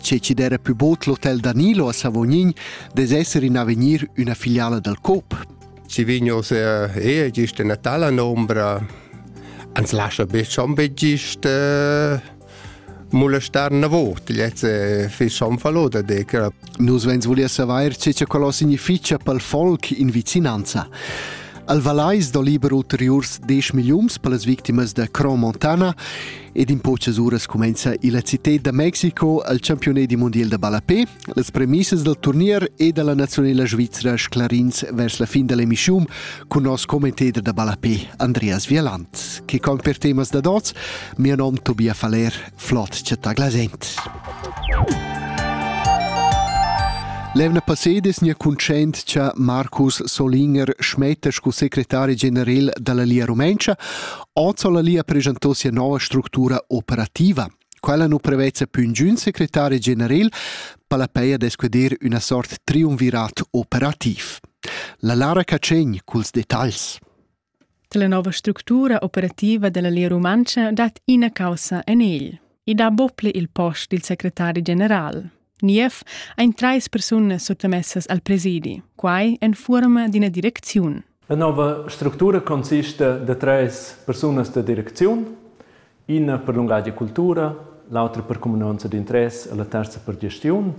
Che chi d'era pü bod l'hotel Danilo a Savognin dess esser in avegnir üna filiala dal Coop. Si vignos e gist in tala nombra ans lascia be schon be gist eh, molestar una volta. Jetzt eh, fi schon fallo da decra. Nus vens volia savair ce che quello significia pel folk in vicinanza. Al Valais do liber ulteriurs 10 millions per las victimas da Cromontana Ed in po uras cumenza la città da Mexico al campione mondial da ballapé, las premissas dal turnier e dalla nazionala svizra sclarins vers la fin dall'emissiun con nos commentator da ballapé Andreas Vieland, che con per temas da dots, mio nom Tobias Faller, flot chatta glasent. Levna Pacedes nia cuncent cha Marcus Solinger schmetta scu secretari generel dalla Lia Rumentscha, Oz ha la Lia presentò sia nova structura operativa. Quella nu prevezza più ingün secretari general palapei ad esquedir üna sort triumvirat operativ. La Lara Cacegn culs detagls. La nova structura operativa della Lia Rumantscha dat ina causa en egl. I dà bople il post dil secretari general. Niev ein treis persunas suttamessas al presidi, quai en fuorma d'ina direcziun. La nova structura consista da treis persunas da direcziun, ina per lungatg e cultura, l'autra per cuminanza d'interess e la terza per gestiun,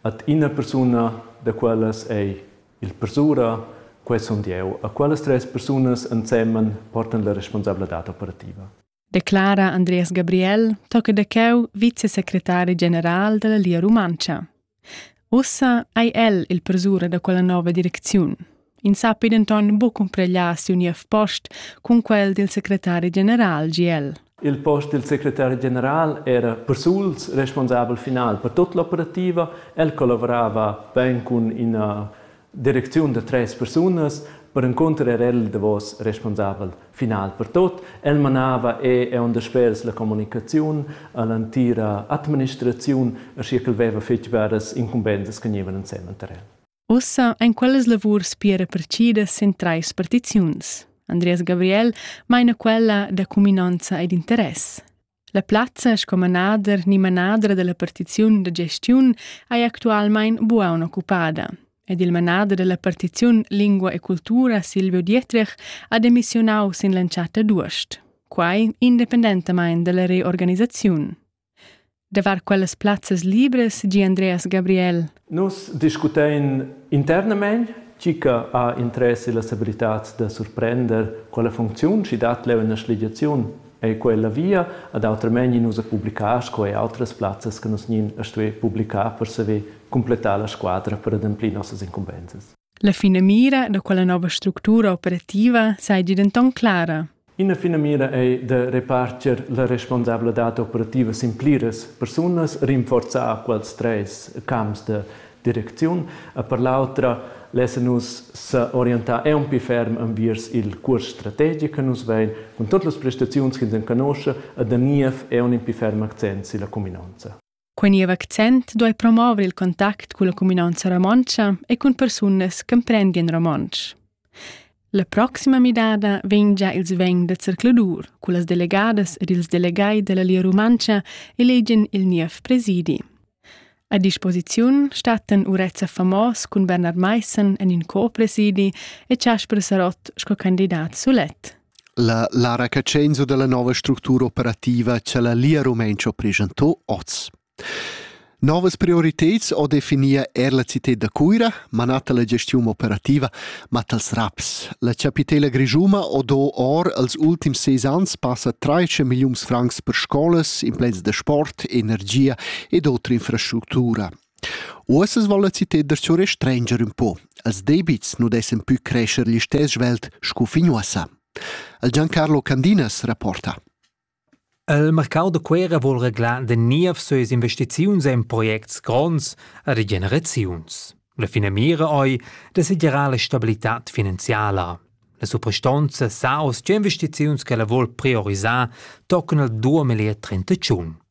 et ina persuna da quellas ei il persura, quei sun jeu. A quellas treis persunas ensemen portan la responsabladad operativa. declara Andreas Gabriel, tocca da cheu vicesecretari general dalla Lia Rumantscha. Ussa ei el il persura da quella nova direcziun. In sappi denton buc cumpreglar siu niev post cun quel dil secretari general GL. Il post del secretari general era persuls responsabel final per tut l'operativa. El collaborava ben cun ina direcziun da tres persunas, perencunter era el il davos responsabel final per tot. El manava e è on daspers la communicaziun all'antira administraziun, aschia ch'el veva fetg varas incumbensas che gnevan ensemen tar el. Ussa ein quellas lavurs pia repartidas en treis partiziuns. Andreas Gabriel meina quella da cuminanza ed interess. La plazza sco manader ni manadra dalla partiziun da gestiun ei actualmein buca occupada ed il manader dalla partiziun Lingua e cultura Silvio Dietrich ha demissionau sin l'entschatta d'uost, quai independentamain dalla reorganisaziun. Davart quellas plazzas libras gi Andreas Gabriel, Nus discutein internamein tgi che ha interess illas abilitads da surprender quella funcziun, schi dat leu ina schligiaziun ei quella via, ad autramain nus a publicar sco e outras plazzas che nus nin a stuer publicar per saver completar la squadra per ademplir nossas incumbensas. La finamira da quella nova structura operativa seigi denton clara. Ina finamira ei da reparter la responsabladad operativa sin pliras persunas, rinforzar quels treis camps de direcziun. E per l'autra lassen nus s'orientar aunc ferm enviers il cuors strategic che nus vein cun totas las prestaziuns che ins enconosce e da niev aunc in ferm accent silla cuminonza. Quei niev accent duei promover il contact culla cuminanza romontscha e cun persunas ch'emprendien romontsch. La proxima midada vegn già ils vegn da zercladur cullas delegadas ed ils delegai dalla Lia Rumantscha elegen il niev presidi. A disposiziun stattan Urezza Famos cun Bernard Meissen en in co-presidi e Casper Sarott sco candidat sulet. La Lara Cacenzo dalla nova structura operativa cha la Lia Rumentscha ha preschantò hoz. Novas prioriteds ho definia eir la cità da Cuira, manata la gestiun operativa mat als raps. La chapitela grischuma ho do or als ultims seis ans passa 13 milliuns francs per scolas, implants da sport, energia ed otra infrastructura. Uossa svoul la citeder surestrenger ün po. Els debits nu dessan pü crescher l'istess svelt scu fin uossa. El Giancarlo Candinas rapporta. Il marcau da Cuera vol reglà de niev söes investiziuns in projects gronds e regeneraziuns. La finamira ei de segirar la stabilitad finanziala. La suprastonza sa aus che investiziuns che la vol priorisar toccano 2031.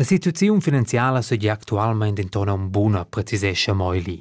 La situaziun finanziala seigi actualmein denton aunc buna, precisescha Meuli.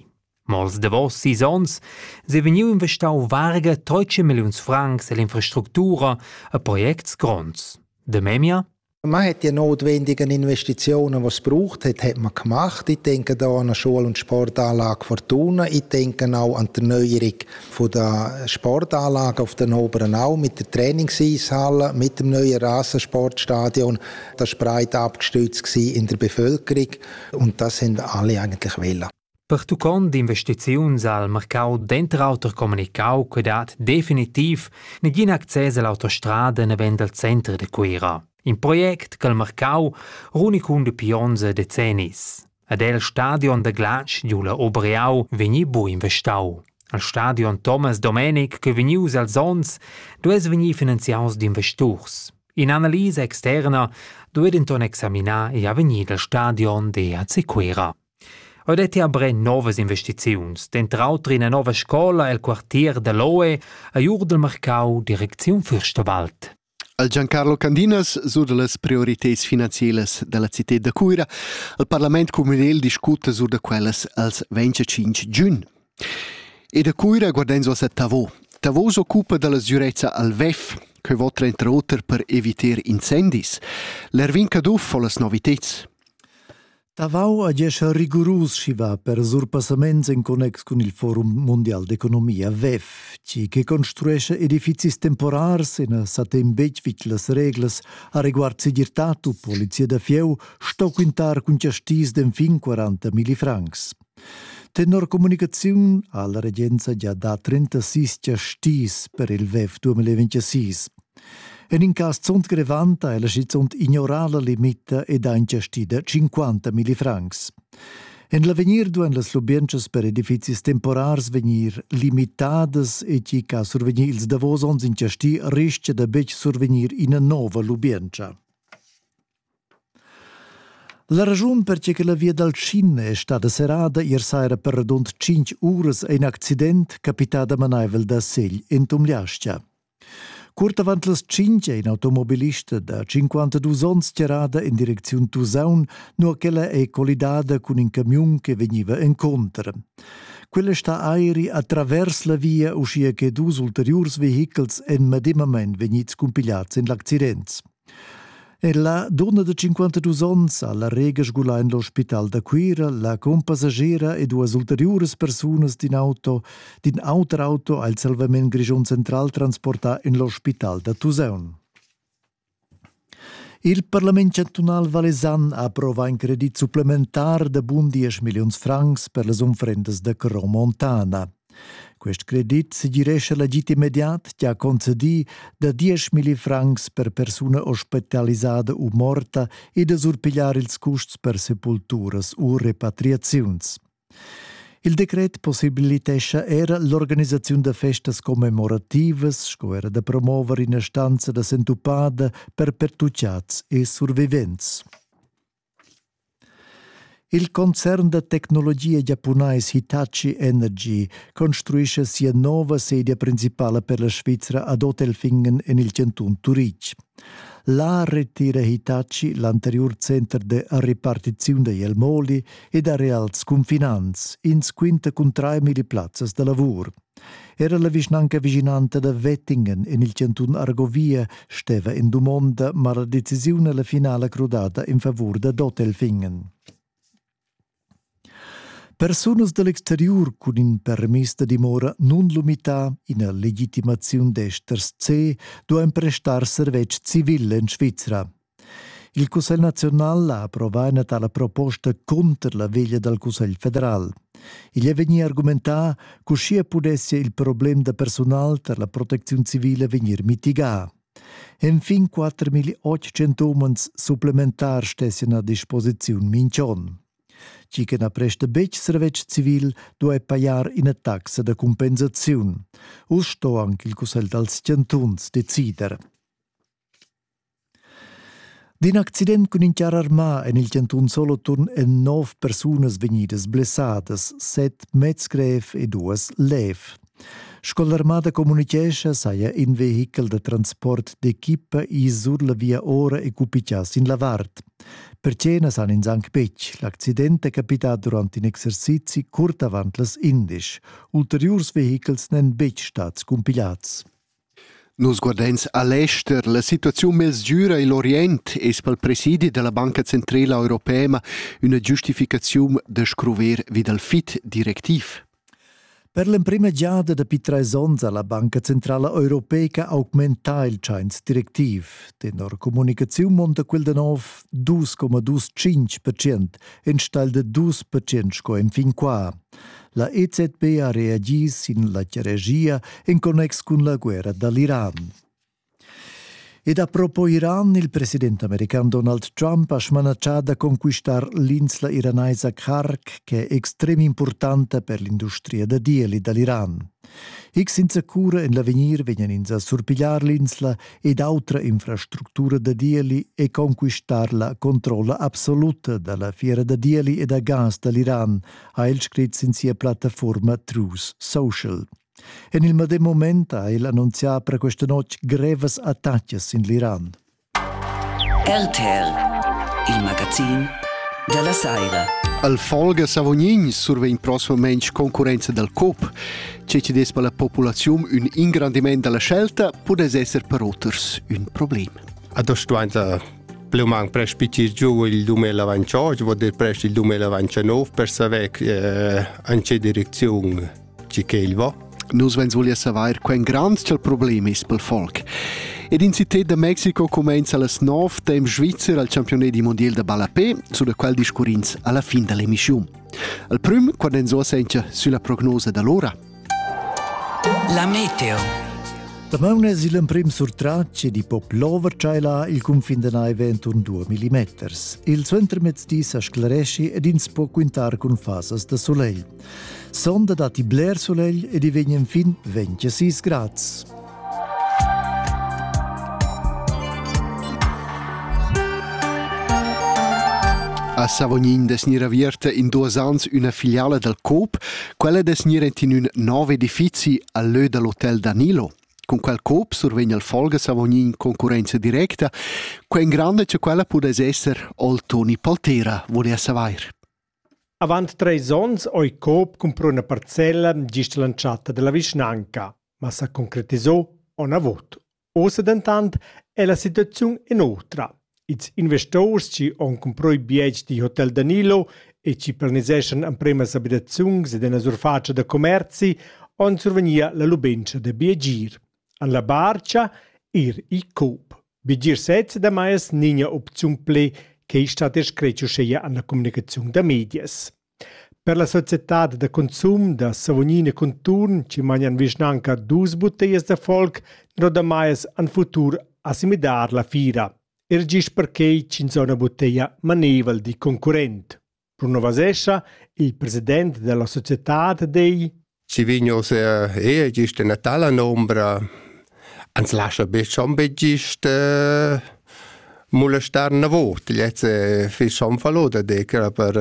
Ma als davos sis onns sei vegniu investau varga 13 milliuns francs ell'infrastructura a projects gronds. De memia? Man hat ja notwendigen Investitionen, was braucht hat, hat man gemacht. Ich denke da an eine Schule- und Sportanlage Fortuna. Ich denke auch an die Erneuerung von der Sportanlage auf den Oberen Au mit der Trainingseishalle, mit dem neuen Rasensportstadion. das breit abgestützt in der Bevölkerung und das haben alle eigentlich wollen. Pertuccond investiziuns al mercau denter auter comunicau che dat definitiv negin access all'autostrada nevend al center de Cuira. In project che il mercau runic un de pionze decennis. Ed el stadion da glatsch giu la Obreau vegni bu investau. Al stadion Thomas Domenic, che vegnius als onns, duess vegnir finanziaus d'investurs. In analisa externa duet enton examinar e avegnir dal stadion de AC Cuera. Ho detti aber novas investiziuns, dentr auter ina nova scola el quartier de Loe a Jurdel Marcau, direcziun Fürstewald. Al Giancarlo Candinas sur las prioritads finanzielas dalla citad da Cuira. Il parlament communal discuta sur da quellas als 25 giun. E da Cuira guarden so a Tavo. Tavo s'occupa dalla sicurezza al VEF, che vota entre auter per evitar incendis. L'Ervin Caduff fa las novitads. Tavau agescha rigurus schi va per surpassaments en connex cun il Forum Mondial d'Economia WEF, tgi che construescha edifizis temporars e na sa tem betg vid las reglas a reguard segirtad u polizia da fieu, sto quintar cun chastis d'enfin 40 milli francs. Tenor communicaziun ha la regenza gia dà 36 giastis per il WEF 2026. En in cas zunt grevant ha ella schizunt ignorà la limita ed ha ingiastì da 50 milli francs. En l'avegnir duan las lubientschas per edifizis temporars vegnir limitadas e tgi ch'ha survegnì ils davos onns ingiastì rischia da betg survegnir ina nova lubientscha. La raschun perche che la via dal Cin è stada serrada ier saira per radund tschinch uras è in accident capità damanaivel da Segl in Tumliastia. Curt avant las tschinch è in automobilist da 52 onns tirada in direcziun Tusaun, nua ch'ella è collidada cun in camiun che vegniva encontro. Quella sta airi atravers la via, uschia che dus ulteriurs vehichels en medemamain vegnids cumpigliads in l'accident. Ella dunna de 52 onns ha la rega sgulà in l'ospital da Cuira la compassagiera e duas ulteriuras persunas d'in auto d'in auter auto ha il Salvament Grischun Central transportà in l'ospital da Tusaun. Il parlament chantunal valesan ha approvà in credit supplementar da bun 10 milliuns francs per las unfrendas da Cro Montana. Quest credit segirescha l'agid immediat che ha concedì da 10.000 francs per persuna ospitalisada u morta e da surpigliar ils custs per sepulturas u repatriaziuns. Il decret possibilitescha era l'organisaziun da festas commemorativas sco era da promover ina stanza da sentupada per pertucciads e survivents. Il concern da tecnologia giapunais Hitachi Energy construescha sia nova sedia principala per la Svizra ad Otelfingen en il chantun Turitg. Là retira Hitachi l'anteriur center da repartiziun da Jelmoli ed areals cunfinants. Ins quinta cun trair milli plazzas da lavur. Era la vischnanca vischinanta da Wettingen en il chantun Argovia steva en dumonda ma la decisiun la finala crudada in favur da Dotelfingen. Persunas dall'exteriur cun in permis da dimora nun lumità ina legitimaziun d'esters C duein prestar servetsch civil en Svizra. Il Cussegl naziunal ha approvà ina tala proposta cunter la veglia dal Cussegl federal. Igl è vegnì argumentà ch'uschia pudessia il problem da persunal tar la protecziun civile vegnir mitigà. Enfin 4.800 umans supplementars stessan a disposiziun minch'on. Chi che na presta betg servetsch civil duai pajar ina taxa da compensaziun. Uss sto anche il Cussegl dals chantuns decider. D'in accident cun in charr armà en il chantun Soloturn èn nov persunas vegnidas blessadas, set meds grev e duas lev. Sco l'armada communitgescha, saja in vehichel da transport d'equipa ì sur la via ora e cupichà sin la vart. Per cenas han ins anc betg. L'accident è capità durant in exercizi curt avant las indisch. Ulteriurs vehichels n'èn betg stads cumpigliads. Nus guardeins a l'ester. La situaziun mezgüra igl Orient es pel presidi dalla Banca Centrala Europea üna giustificaziun da scruver vi dal fit directiv. Per l'emprima giada dapi trais ons ha la Banca Centrala Europeica augmentà il tschains directiv. Tenor comunicaziun monta quel da nov 2,25% enstagl da 2% sco enfin qua. La EZB ha reagi sin la regia en connex cun la guerra dall'Iran. Ed a propos Iran, il president american Donald Trump ha smanatschà da conquistar l'insla iranaisa Kark, che è extrem importanta per l'industria da dieli dall'Iran. X senza cura en l'avegnir vegnan ins a surpigliar l'insla ed autra infrastructura da dieli e conquistar la controlla absoluta dalla fiera da dieli e da gas dall'Iran, ha el scrit sin sia plattafuorma Truth Social. En il medem moment ha el annunzià per questa notg grevas attacas in l'Iran. RTL, il magazin della Saira. Al Folge Savognin survegn prossimamente concorrenza dal COP. Ciò ci des per la popolazione un ingrandimento della scelta può essere per oters un problema. A das du Pluman prespitgir giù il 2028, vuol dir prest il 2029 per saver eh, an che direcziun ci che il va. Nus vens voglia saver quen grand ch'el problem is pel folk. Ed in città da Mexiko comenza las 9 temp Svizzer al campionet di mondial da ballapé, su da qual discurrins alla fin dall'emissiun. Al prüm, quando enso sencha sulla prognosa da l'ora. La meteo. Damaun es il emprim surtratg ed i po plover tschailar il cunfin da naiva enturn 2 mm. Il suentermezdi sa sclaresci ed ins po quintar cun fasas da solegl. Sonda datti bler solegl ed i vegn enfin 26 grads. A Savognin dess gnir avierta in duos ans üna filiala dal Coop. Quella dess gnir ent in ün nov edifizi al lö da l'hotel Danilo. Cun quel Coop survegn al Folge Savognin concurrenza directa. Quen grande che quella pudess esser ol Toni Paltera, vole a savair. Avant treis onns oi Coop cumpra üna parcella gist l'antschatta della vischnanca. ma s'ha concretisà onavot. Ossa dentant è la situaziun in'otra. Ils investors chi han comproi bietgs di Hotel Danilo e chi planiseschan ampremas abitaziuns ed ina surfatscha da commerzi han survegnia la lubentscha da biegir. An la barcha ir i Coop. Biegir sezza da mais nigna opziun ple che stat scretg uscheia an la comunicaziun da medias. Per la societad da consum da Savognin e conturn chi magnan vischnanca duos butteglas da folk nodamais han futur assimidar la fiera. Er gist perquai ch'insomma butteglia maneivel di concurrent, rinnovasescha il president da la societad dei Si vign oz er gist ena tala nombra, ans lascha be schon be gist eh, molestar na vot. Lez è fis schon fallo da decra per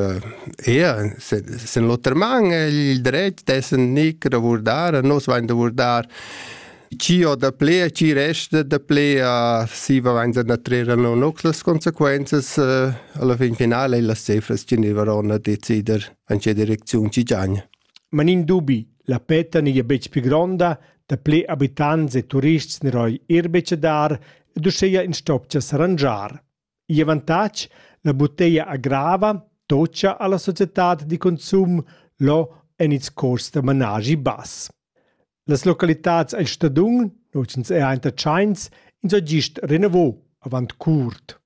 ea, sen l'oter man il dret dessen nic ravurdar, nos vain da vurdar chi ho da ple a chi resta da ple a si va vain da trera non nox las consequenzas eh, alla fin finale las cefras chi ne varon a decider an che direcziun ci giagna. Ma nin dubi, la petta n'eia betg pli gronda, dapli abitants e turists n'eroi eir betg a dar ed uschea ins stoppcha s'arrangiar. Il avantatg, la butteglia agrava tocca a la societad da consum lo en ils cuors da managi bass. Las localitats el stadun, no ch'ins è aint a Tschains, ins ho gist renavo avant curt.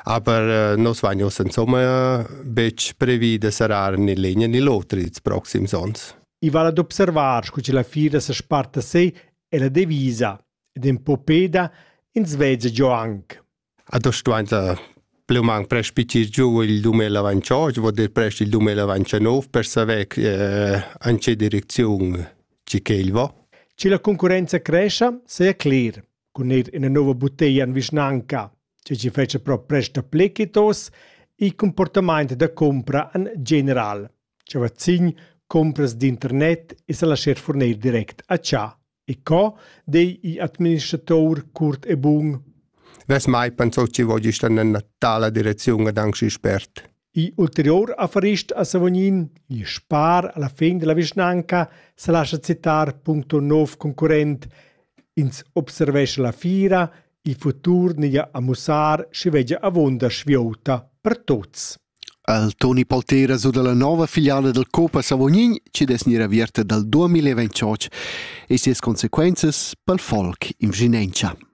Aber nos vain uss insomma betg previs da serrar ni l'in ni l'oter ils proxims ons. I vala d'observar scu che la fira sa sparta sei e la devisa ed in po peda ins veza giò anc. A do stuainta pleumanc prespicir giù il 2028, vuol dir prest il 2029 per saver eh, an che direcziun ci che il va. Ce la concurenza crescia, sei cler. cun eir üna nouva butteglia in vischnanca, che chi fetscha però prest dapple che tos, il comportamaint da compra in general, cha vazzin compras d'internet e sa lascher furner direct a cha. E co dei il administratur curt e bun? Vess mai pensau chi vogi sta nella tala direziun ad anxi spert. I'ulteriur affarist a Savognin, il spar alla fin dalla vischnanca, sa lascha citar puncto nov concurrent. Ins observescha la fira, il futur neglia a mussar schi veggia avonda sviota per tuts. Al Toni Poltera su dalla nova filiala del Copa Savognin ci des ni avierte dal 2028 e sias consequenzas pel folk in Viginencia.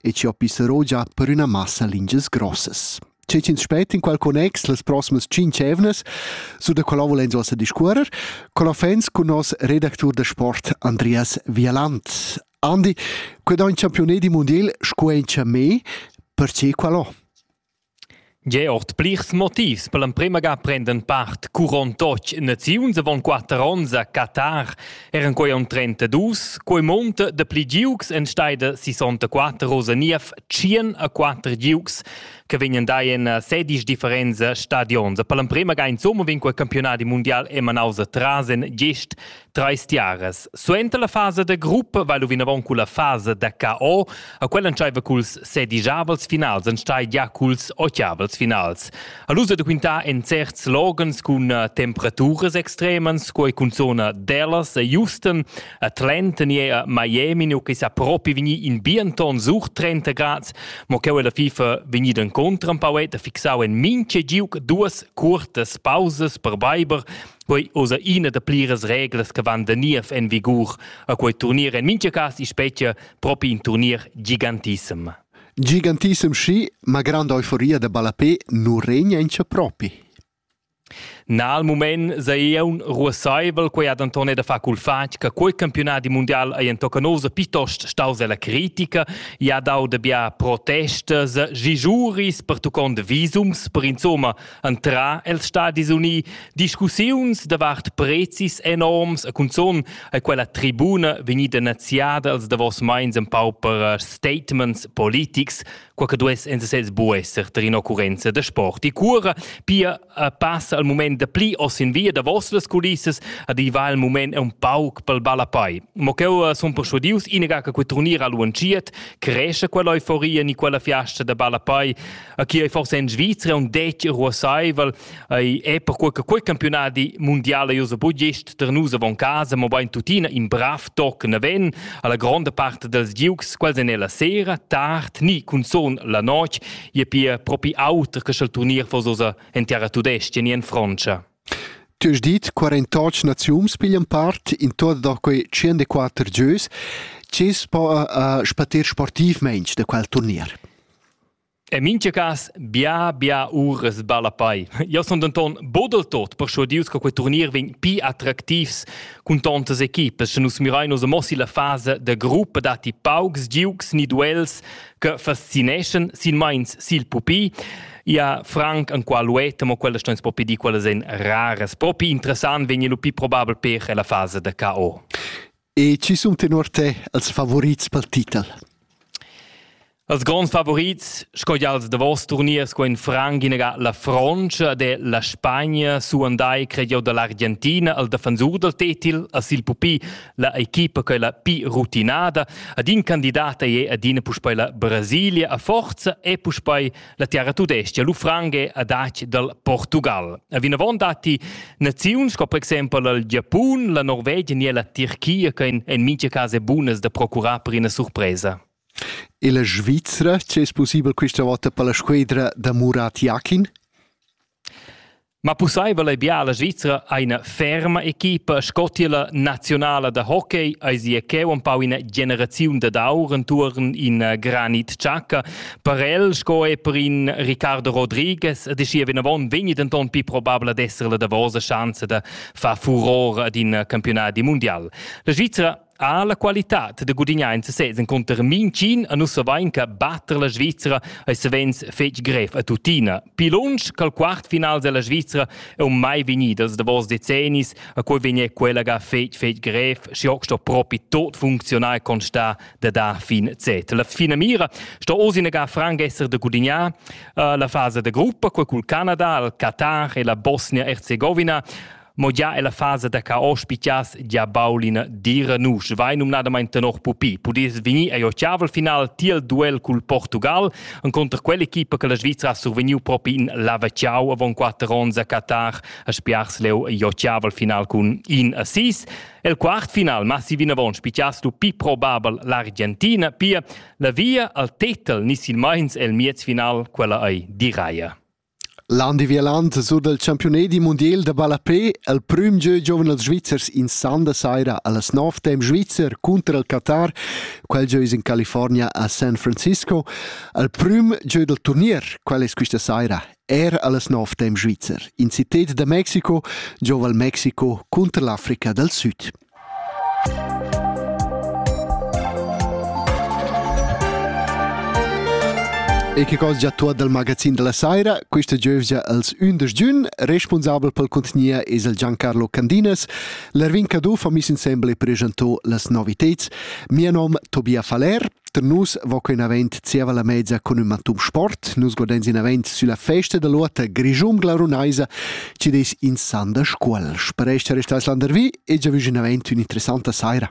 e chi ho pissero già per üna massa lingias grossas. Che ch'ins spet in qual connex las proximas tschinch evnas su da quella volens ossa discuorer con offens cun nos redactur da sport Andreas Vialant. Andi, qued on champione di mondiel scu encha me, perche qual ho? Gia ord plirs motivs per l'emprema ga prendan part curon totg naziuns avon quater onns a Qatar, eran quei aunc trentadus. Quei munta dapli giugs enstei da sisontaquater rosa niev tschien a quater giugs che vegnan dai en sedisch differents stadions. Per l'emprema ga insomma vegn quei campiunadi mundial emanaus atras en gest Treis tiaras. Suenter la fasa da gruppa va lu vinavon culla fasa da KO, a quella entscheiva culs sedigiavels finals, enstagl gia culs ochiavels finals. A lu da quintar en certs loghens cun eh, temperaturas extremas, sco cun zona Dallas e Houston, a Atlanta ni a Miami, nu che sa propi vegni in bien ton sur 30 grad, mo cheu la FIFA vegnida incontro un pauet a fixau en minche giuc duas cuortas pausas per beiber Quei osa ina da pliras reglas che van da niev en vigur a quei turnier en mintga cas i spetga propi in turnier gigantissem. Gigantissem schi, ma granda euforia da ballapé nu regna encha propi. Na al mument sa eun ruossaivel quei ad Antonio da fa cul fatg che quei campionat di mondial ei entocca nosa piuttost staus ella critica e ha dau da bia protestas, gijuris pertuccont visums per insomma Entrà els Stadis Unì discussiuns davart prezis enorms e cunzun è quella tribuna vegnida naziada als davos mais en pau per eh, statements politics, quai che duess en sesez bu esser tar in'occurrenza da sport. E cura pia eh, passa al mument da pli oss in via davos las culissas ad i va il mument un pauc pel balapai. Ma cheu eh, sun persuadius inaga che quei turnir a luanciet, creesce quella euforia ni quella fiasta da balapai a chi ei forse in Svizra un detg ruossaivel ei è per quei che quei campionati mondiale io so budgist der nus avon casa mo bein tutina in brav toc ne ven alla gronda parte dels giugs quels en la sera tard ni cun son la noc je pia propi auter che schel turnier for sosa en terra tudesca ni en Francia Tu has dit 48 naziums piglian part in tot da quei 104 gieus. Cis po uh, spatir sportiv mensch de quel turnier. En mintga cas bia bia uras ballapei. Jeu sun denton buc del tot perschuadius che quei turnir vegn pli attractivs cun tontas equipas, sche nus mirein oz mo silla fasa da gruppa datti paucs giugs ni duels che fascineschan silmeins sil pupi. Ja, franc enqual ueta, mo quellas steins propi dir quellas ein raras. Propi interessant vegn lu pli probabel per ella fasa da KO. E chi sun tenor te els favorits pel titel? Als gronds favorits, sco gia als davos turniers qua in Franc inaga la Frontscha della Spagna suandai cred jeu dall'Argentina al defensur dal tetil a sil pupi la equipa quella pi rutinada ad in candidata e ad ina puspei la Brasilia a forza e puspei La tiara tudestga Lufrange a dac dal Portugal. A vinavon datti naziuns sco per exempel il Giapun, la Norvegia ni la Tirchia che en mintga cas è bunas da procurar per ina surpresa. E la Svizzera, c'è possibel questa volta per la squadra da Murat Yakin? Ma pussaivel ei bia alla Svizra eine ferma equipa sco tier la nazionala da hockey ei sia cheu empau ina generaziun dad aur entuorn in eh, granit tschacca. Per el sco e per in Ricardo Rodriguez e dischia vinavon vegni denton pi probabel ad esser la davosa chance da far furor ad in eh, campionat mundial. La Svizra Ha la qualitad da gudignar en sesez encunter mintgin a nus savein che batter la Svizzera ei savens fetg grev a tuttina. Pli lunsch col quart finals della Svizzera è un mai vegnida els davos decennis a cui vegnir quella ga fetg fetg grev și hoc sto propi tot funzionar constar da da fin Z. La fina mira sto osinega franc esser da gudignar uh, la fase de gruppa col cul Canada, il Qatar e la Bosnia-Herzegovina Mo già è la fasa da caos pigliass gia baul ina dira nusch. Vai numnadamain tenor pupi. Pudess vegnir a Jochavel final tiel duel cul Portugal enconter quell'equipa che la Svizra ha survegniu propi in lavacciau avon quatter onns a Qatar a spiars leu Jochavel final cun in assist. El quartfinal massi vinavon spichias lu pi probabel l'Argentina, pia la via al tetel ni silmeins el miezfinal quella ei diraia. L'Andi Vialand sur dal campiunadi mundial da ballapè el prüm gieu giovens svizzers in san da saira a las nov temp svizzer cunter il Qatar. Quel gieu es in California a San Francisco. El prüm gieu dal turnier, quel es quista saira, er a las nov temp svizzer. In cited da Mexico, giova il Mexico cunter l'Africa dal Süd. E che cosa già tuot dal magazin della saira, questa giövgia als ündesch giun, responsabel pel contgnia es el Giancarlo Candinas. L'Ervin Caduff ha miss insembel e preschanto las noviteds. Mia nom Tobia Faller. Per nus va quei avent zieva la mezza cun ün mantun sport. Nus godens in avent sülla festa da l'ota Grischun glarunaisa, ci des in san da Scuol. Spereste restais landervi e già vüs in avent ün'interessanta saira.